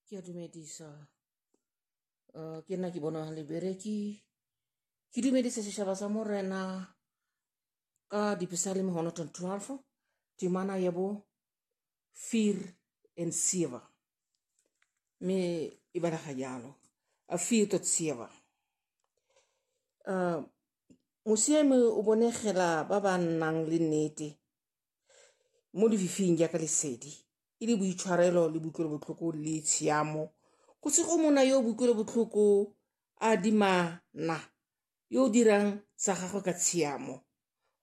Ke a dumedisa uh, ke nna ke bona lebereki ke dumedisa setšhaba sa morena ka dipesaleme 112 temana ya bo fear and sever mme e balaga jalo a fear tot sever uh, mosiame o bonegela ba ba nnang le nnete mo lefifing jaaka lesedi e le boitshwarelo le boikuelobotlhoko le tshiamo go se go mona yo boikuelobotlhoko a dimana yo o dirang sa gagwe ka tshiamo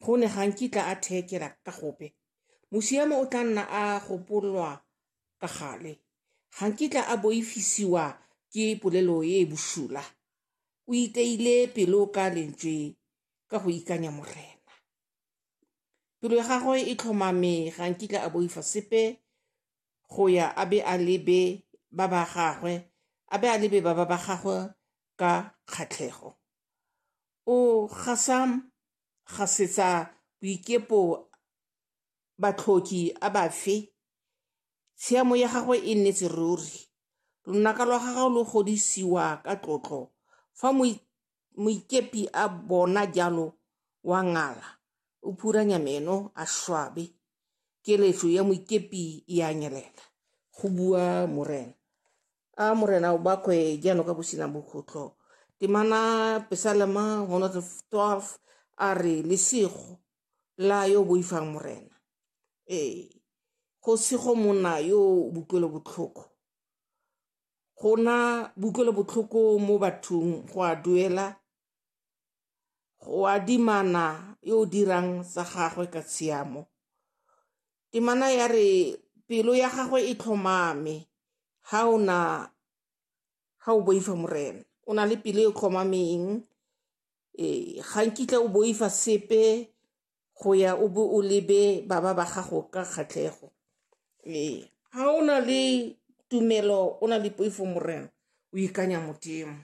go ne ga nkitla a theekela ka gope mosiamo o tla nna a gopolwa ka gale ga nkitla a boifisiwa ke polelo e e bosula o iteile pelo ka lentswe ka go ikanya morena Pelo ya gagwe e tlhomame ga nkitla a boifa sepe go ya a be a lebe ba ba gagwe a be a lebe ba ba ba gagwe ka kgatlhego o gasa gasetsa boikepo batlhoki a bafe tshiamo ya gagwe e nnetse ruri lonaka lwa gagwe lo godisiwa ka tlotlo fa Moikepi a bona jalo wa ngala, o phuranya meno a šwabe. Keletšo ya moikepi e a nyelela, go bua morena. A morena o bakwe jano ka bosina bokgotlo. Temana Pesalema 112 a re lesego la yo boifang morena. Ee, go sego monna yo o butlwelo botlhoko. go na botlhoko mo bathong go a duela go adimana yo o dirang sa gagwe ka tshiamo temana ya re pelo ya gagwe e tlhomame ha o na ha o boifa morena o na le pelo e tlhomameng e ga nkitla o boifa sepe go ya o bo o lebe baba ba gago ka kgatlhego. Ee, ha o na le tumelo, o na le poifo Morena, o ikanya Modimo.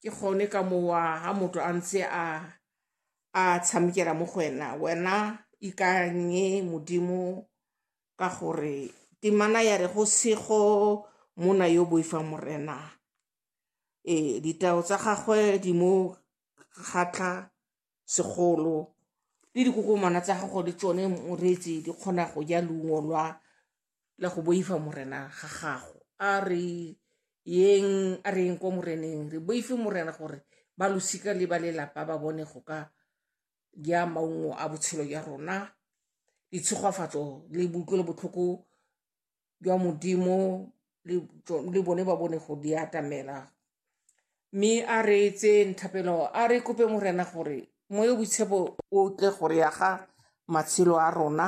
Ke gone ka mowa ha motho a ntse a tshamekela mo go wena, wena ikanye Modimo ka gore temana ya re go sego monna yo boifang Morena. Ee, ditau tsa gagwe di mo kgatlha segolo le dikokomana tsa gago le tsone moreetsi di kgona go ja leungo lwa la go boifa morena ga gago a re yeng a re yeng kwa moreneng re boife morena gore ba losika le ba lelapa ba bone go ka ja maungo a botshelo jwa rona ditshegofatso le botlhoko jwa modimo le bone ba bone go di atamela mme a re etse nthapelo a re kope morena gore moyo boitshepo o tle gore ya ga matshelo a rona